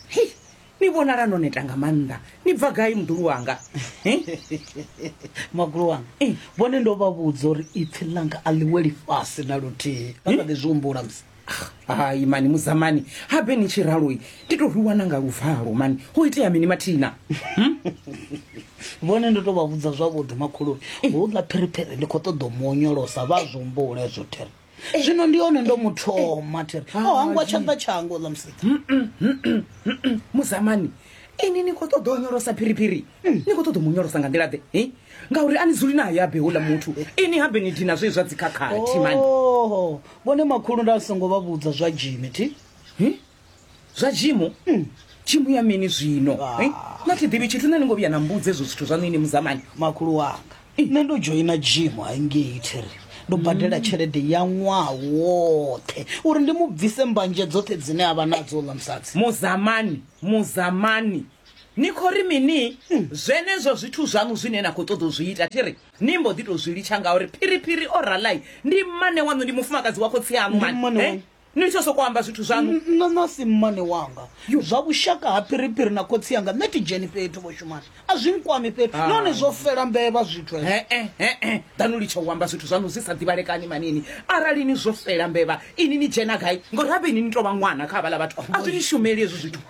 hei ni vhonala no neta nga maanḓa ni bva gai muḓulu wanga magulu wanga eh. vhone ndo vha vhudza uri ipfi ḽanga a ḽiwe lifhasi na luthihi vha sa ḓi zwi humbula musi ah, hai mani muzamani habe ni tshi raloi ndi to rwiwana nga luvalo mani ho itea mini mathina hmm? vhone ndo to vha vhudza zwavhuḓi makhuluni eh. hu ḽa phiriphiri ndi khou ṱoḓa u mu onyolosa vha zwi humbule zwo thera zwino ndi hone ndo muthoma thiri o oh, hangwa tshanḓa tshango ḽa musika muzamani ini ni khou ṱoḓa o nyolosa phiriphiri mm. ni khou ṱoḓa mu nyolosa nga nḓila ḓe ngauri a ni dzuli nayo abe houḽa muthu ini habe ni dina zwe zwa dzikhakhathi mani vhone makhulu nda songo vha vhudza zwa jimi thi zwa jimu mm. jimu ya mini zwino ah. eh? na thi ḓivhi tshithu nṋe ni ngo vhuya na mbudza ezwo zwithu zwaṋu ini muzamani makhulu wanga eh. nṋe ndo dzhoina jimu haingei thiri ndo badela mm. tshelede ya ṅwaha woṱhe uri ndi mu bvise mbanje dzoṱhe dzine a vha nadzo ḽa musadzi muzamani muzamani ni khou ri mini mm. zwenezwo zwithu zwaṋu zwine na khou ṱoḓa u zwi ita thi ri ni mbo ḓi tou zwi litsha ngauri phiriphiri o ralai ndi mmane waṋu ndi mufumakadzi wa khotsi aṋu mani ni tsho sokou amba zwithu zwaṋu nṋe nasi mmane wanga zwa vhushaka ha phiriphiri na khotsi yanga nṋe thi dzheni fhethu vho shumani a zwi nkwami fhethu ah. nahone zwo fela mbevha zwithu ee danu litsha u amba zwithu zwaṋu zwi sa ḓivhalekani manini arali ni zwo fela mbevha ini ni dzhena gai ngori habe ini ni tou vha ṅwana kha havhala vhathu a zwi ni shumeli hezwo zwithu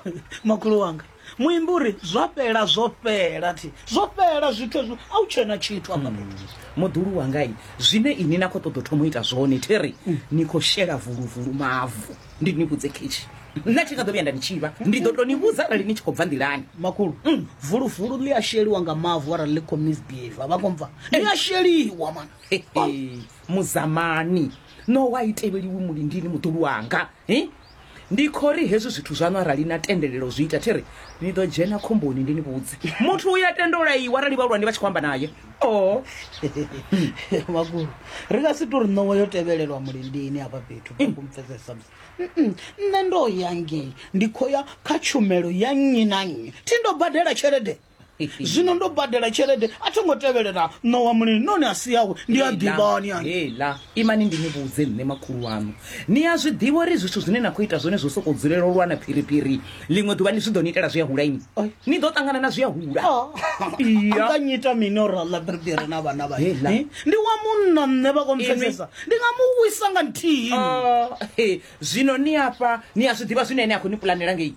makhulu wanga muimbi uri zwa fhela zwo fhela thi zwo fhela zwithu ezwi a u tshena tshithu afha hmm. fhethu muḓulu wanga i zwine ini na khou ṱoḓa thoma u ita zwone theri hmm. ni khou shela vuluvulu mavu ndi ni vhudze khetshi nṋe thi nga ḓo vhuya nda ni tshivha ndi ḓo to ni vhudza arali ni tshi khou bva nḓilani makulu hmm. vuluvulu ḽi a sheliwa nga mavu arali ḽi khou misbehave vha khou bva ḽi a sheliwa mana muzamani no wa i tevheliwi mulindini muḓulu wanga Ndi khou ri hezwi zwithu zwaṋu arali na tendelela u zwi ita, thi ri ni ḓo dzhena khomboni. Ndi ni vhudze, muthu uyo a tenda u laiwa arali vhahulwane vha tshi khou amba nae. Oh. Makhulu, ri nga si tou ri ṋowa yo tevhelelwa mulindini hafha fhethu kha ku mpfesesa musi. Mm-mm, Nṋe ndo ya ngei, ndi khou ya kha tshumelo ya nnyi na nnyi. Thi ndo badela tshelede. zwino ndo badela tshelede a tho ngo tevelela ṋowa mulini noni a si yawe ndi a ḓivhani hela imani ndi ni vhudze nṋe makhulu wanu ni a zwi ḓivha uri zwithu zwine na khou ita zwone zwo sokou dzulela u lwana phiriphiri ḽiṅwe ḓuvha ni zwi ḓo ni itela zwi a hula ini ni ḓo ṱangana na zwi a hula nga nyita mini ora ḽa phiriphiri na vhana vha eh? ndi wa munna nṋe vha kompfesesa ndi nga mu wisa nga nthihi ah, zwino ni afha ni a zwi ḓivha zwine ene a khou ni pulanela ngei